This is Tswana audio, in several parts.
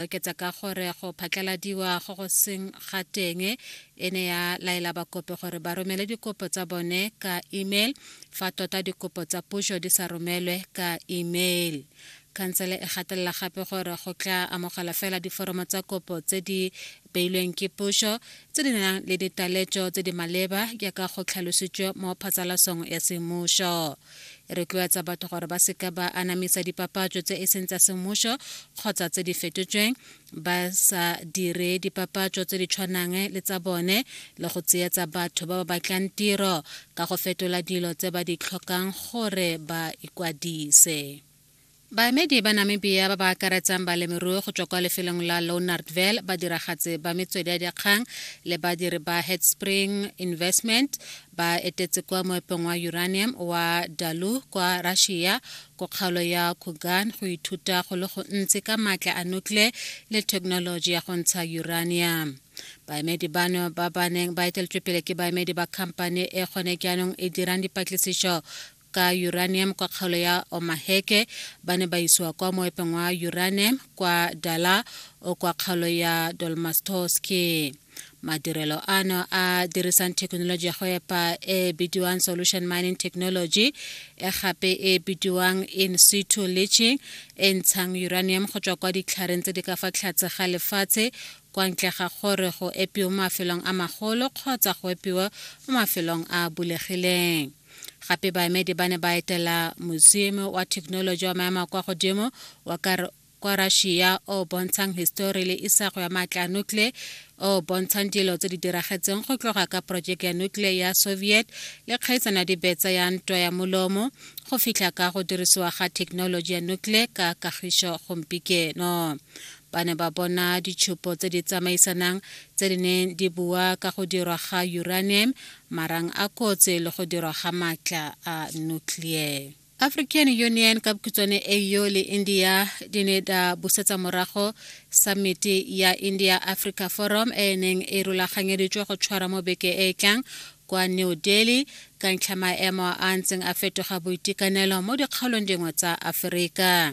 oketsa ka gore go phatlaladiwa go go seng ga teng e ne ya laela bakopi gore ba romele dikopo tsa bone ka email fa tota dikopo tsa puso di sa romelwe ka email khansele e gatelela gape gore go tla amogela fela diforomo tsa kopo tse di beilweng ke puso tse di nang le ditaletso tse di maleba jaaka go tlhalositswe mo phatsalasong ya semmuso e retloetsa batho gore ba seka ba anamisa dipapatso tse e seng tsa semmušo kgotsa tse di fetotsweng ba sa dire dipapatso tse di tshwanang le tsa bone le go tseetsa batho ba ba batlang tiro ka go fetola dilo tse ba di tlhokang gore ba ikwadise Baemedi ba Namibia ba ba akaretsang balemirui go tswa kwa lefelong la Lounardville, badiragatsi ba metswedi ya dikgang le badiri ba Headspring Investment ba etetse kwa moepong wa uranium wa Dalu kwa Russia ko kgaolo ya Kugan go ithuta go le gontsi ka maatla a nuclear le thekenoloji ya go ntsha uranium. Baemedi bano ba ba neng ba eteletswe pele ke baemedi ba khamphane e gone jaanong e dirang dipatlisiso ka uranium kwa kgaolo ya Omaheke ba ne ba isiwa kwa moepeng wa uranium kwa Dala o kwa kgaolo ya Dolmastoski. Madirelo ano a dirisang thekenoloji ya go epa e bidiwang solution mining technology e gape e bidiwang in situ leaching e ntshang uranium go tswa kwa ditlhareng tse di ka fa tlhatse ga lefatshe kwa ntle ga gore go epiwe mo mafelong a magolo kgotsa go epiwe mo mafelong a bulegileng gape baemedi ba ne ba etela museum wa thekenoloji wa maemo a kwa godimo wa kwa russia o bontshang histori le isago ya maatla a nuclear o bontshang dilo tse di diragetseng go tloga ka projeke ya nuclear ya soviet le kgaitsano ya dibetsa ya ntwa ya molomo go fitlha ka go dirisiwa ga thekenoloji ya nuclear ka kagišo gompikeno ba ne ba bona ditshupo tse di tsamaisanang tse di neng di bua ka go dirwa ga uranium marang a kotse le go dirwa ga maatla a nuclear African Union ka bokhutswane AU le India di ne da busetsa morago samiti ya India Africa Forum e e neng e rulaganyeditswe go tshwara mo beke e e tlang kwa New Delhi ka ntlha maemo a ntseng a fetoga boitekanelo mo dikgaolong dingwe tsa Aforika.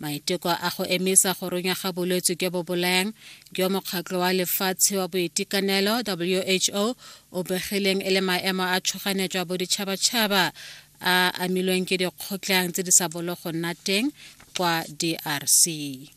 Maiteko a go emisa go runya ga bolwetse jo bo bolayang jo Mokgatlho wa Lefatshe wa Boitekanelo, WHO, o begileng e le maemo a tshoganetso a boditšhabatšhaba a amilweng ke dikgotlhang tse di sa bolo go nna teng kwa DRC.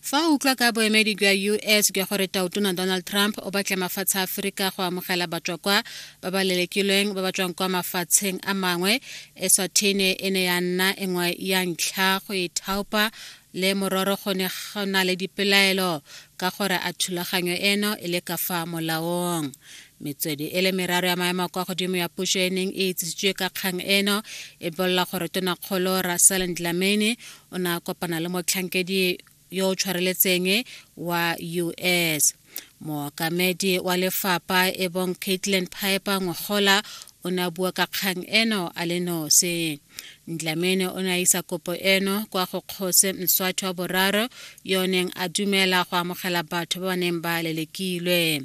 Fa o utlwa ka boemedi jwa US jwa gore Tautona Donald Trump o batla mafatshe a Aforika go amogela batswakwa ba ba lelekilweng ba ba tswang kwa mafatsheng a mangwe Eswathene e ne ya nna engwe ya ntlha go e thaopa le mororo go ne go na le dipelaelo ka gore a thulaganyo eno e le ka fa molaong. Metswedi e le meraro ya maemo kwa godimo ya puso e neng e itsisitswe ka kgang eno e bolela gore tonakgolo Russell Ndlamini o ne a kopana le motlhankedi yo o tshwareletseng wa us mookamedi wa lefapa e bong caitlin piper ngogola o ne a bua ka kgang eno a le nose ndlamene o ne a isa kopo eno kwa go kgose mswatho wa boraro yo o neng a dumela go amogela batho ba ba neng ba lelekilwe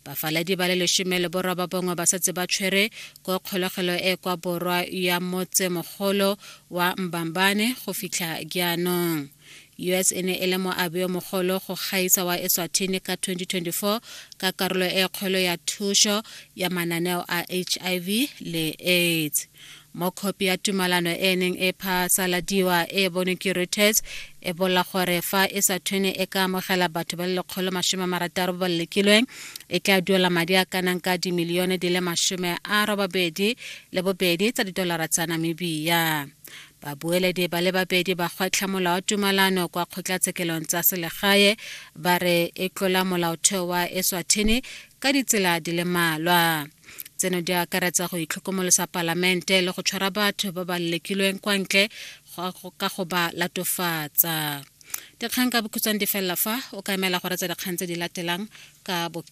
bafaladi ba le lesome le boroba bongwe ba setse ba tshwere ko kgolegelo e kwa borwa ya motse mogolo wa mbambane go fitlha jaanong U.S. e ne e le moabi yo mogolo go gaisa wa Eswatini ka 2024 ka karolo e kgolo ya thuso ya mananeo a HIV le AIDS. Mo khopi ya tumalano e neng e phasaladiwa e bonwe ke Reuters e bolla gore fa Eswatini e ka amogela batho ba le lekgolo masome marataro ba ba lekilweng e tla duela madi a kanang ka dimilione di le masome a robabedi le bobedi tsa didolara tsa Namibia. Babueledi ba le babedi ba gwetlha molao wa tumalano kwa kgotlatshekelong tsa selegae ba re e tlola molaotheo wa Eswatini ka ditsela di le mmalwa. Tseno di akaretsa go itlhokomolosa palamente le go tshwara batho ba ba lekilweng kwa ntle ka go ba latofatsa. Dikgang ka bokhutshwane di felela fa o ka emela go retsa dikgang tse di latelang ka